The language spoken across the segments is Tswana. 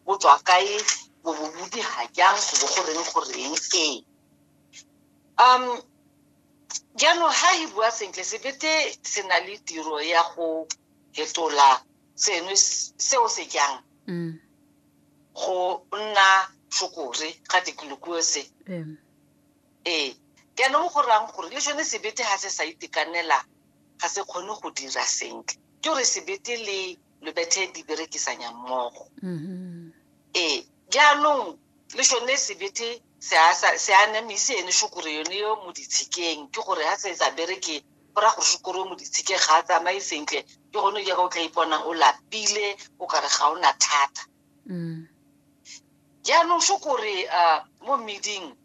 bo tswa kae bo bo bodi ga jang go bo go reng go reng ee um jaanong ga e bua sentle sebete se na le tiro ya go fetola seno seo se jang mm. go nna tlhokore ga tikolokue se ee jaanong go rang gore le sone sebete ga se sa itekanela ga se kgone go dira sentle ke gore sebete le lo bethe di berekisanya mmogo mm-hmm. ee jaanong le sone sebethe se a namise ene shukure yone yo mo ditshikeng ke gore ga se sa bereke go ra gore shukure yo mo ditshikeng ga a tsamaye sentle ke gone jaaka o tla iponang o lapile o kare ga o na thata mm. jaanong shukure um mo meding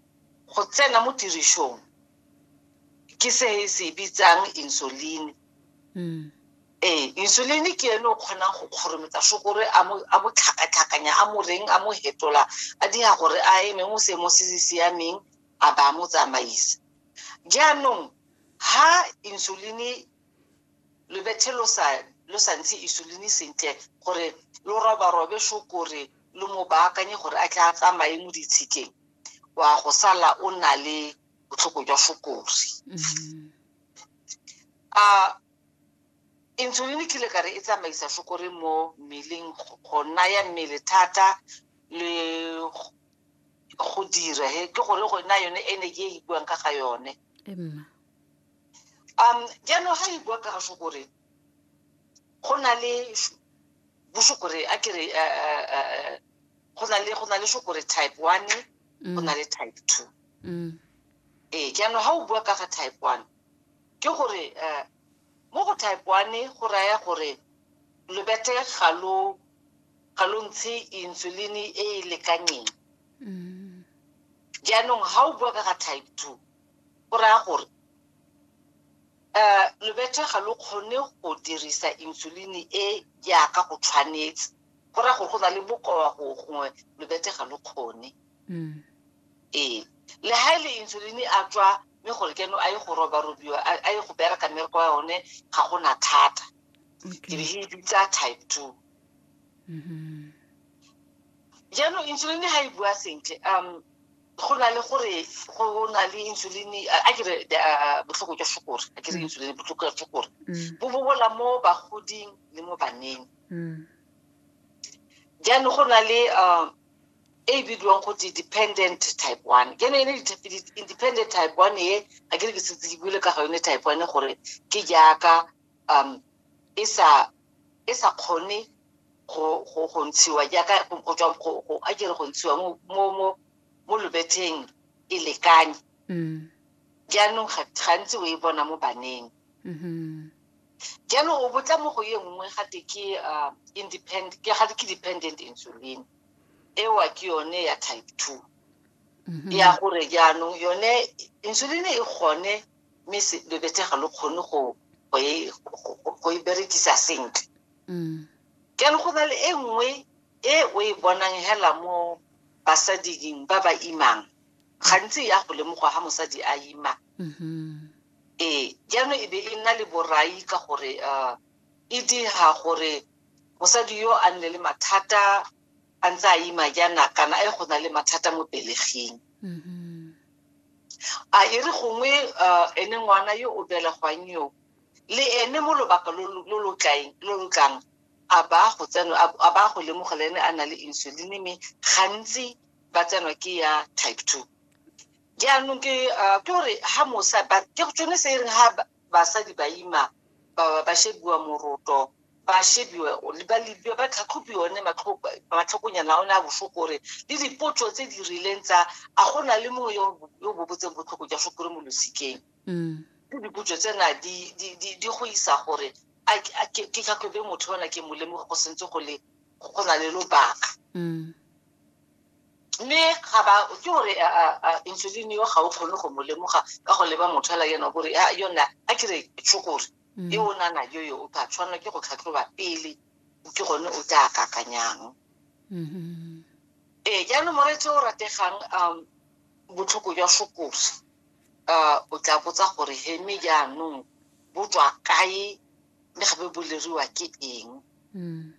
go tsena mo tirisong ke se se bitsang insulin mm. Ee, insulin ke ene o kgonang go kgorometsa sukiri a mo a mo tlhakatlhakanya a mo reng a mo hetola a dira gore a eme mo seemo se se siameng a ba mo tsamaisa jaanong ha insulin lobethe lo sa lo sa ntshe insulin sentle gore lo roba robe sukiri lo mo baakanye gore a tla tsamaye mo ditshikeng wa go sala o na le botlhoko jwa sukiri mm-hmm. a insulin e kile ka re e tsamaisa sukiri mo mmeleng go naya mmele thata le go dira he ke gore go nna yone energy e e buang ka ga yone um jaanong ga e bua ka ga sukiri go na le bosukiri a kere eh, eh, go na le go na le sukiri type one go na le type two mm. ee jaanong ga o bua ka ga type one ke gore um mo go type one go raya gore lobete ga lo ga lo ntshe insulin e e lekanyeng mm. jaanong ga o bua ka ga type two go raya gore um lobete ga lo kgone go dirisa insulin e jaaka go tshwanetse go raya gore go na le bokoa gongwe lobete ga lo kgone mm. ee le ha ile e insulin a tswa me gore keno a ye go roba robiwa a ye go bereka mmereko wa yone ga go na thata ke be e bitsa type two mm-hmm. jaanong insulin ga e bua sentle um go na le gore go na le insulin a kere botlhoko jwa sukore a kere mm. insulin botlhoko jwa sukore mm. bo bobola mo bagoding le mo baneng jaanong go na le um e bidiwang go te dependent type one ke ne e le independent type one e ga ke re ke setse ke buile ka ga yone type one gore ke jaaka um e sa e sa kgone go go go ntshiwa jaaka go tswa go go a kere go ntshiwa mo mo mo mo lobetheng e lekane mm. jaanong gantsi o e bona mo baneng mm-hmm. jaanong o botla mo go ye nngwe gate ke uh, independent ke gate ke dependent insulin ewa ke yone ya type two mhm. ya gore jaanong yone insulin e kgone mme lebetse ga lo kgone go e, e berekisa sentle mm. ke le go na le e nngwe e o e bonang hela mo basading ba ba imang gantsi ya go lemoga ga mosadi a ima mm-hmm. ee jaanong e be e nna le borai ka gore um e dira gore Mosadi yo a nne le mathata a ntse a ima jaana kana e go na le mathata mo peleging. Mm-hmm. A e re gongwe uh, ene ngwana yo o belegwang yo le ene mo lobaka lo lo tlang a ba go tsenwa a ba go lemoga le ene a na le insulin mme gantsi ba tsenwa ke ya type two jaanong ke uh, ke gore ha mosa ke tsone se e reng basadi ba ima ba ba shebiwa moroto ba shebiwe ba lebiwa ba tlhatlhobiwa one matlhokonyana a one a botlhoko gore le dipotso tse di rileng tsa a go na le mongwe yo o bobotseng botlhoko jwa sokore mo losikeng mm. ke dipotso tsena di go isa gore ke tlhatlhobe motho ona ke molemoge go sentse go le go na le lobaka mm. mme ga ba ke gore insulin eo ga o kgone go mo lemoga ka go leba motho ala yena gore yona a kere tshokore mm. e o nana yo yo o ka tshwanela ke go tlhatlhoba pele ke gone o tla kakanyang mm-hmm. ee jaanong moreetse o rategang um botlhoko jwa sokore um o tla botsa gore heme jaanong bo tswa kae mme gape boleriwa ke eng mm.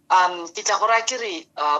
um ke tla go raya ke re uh,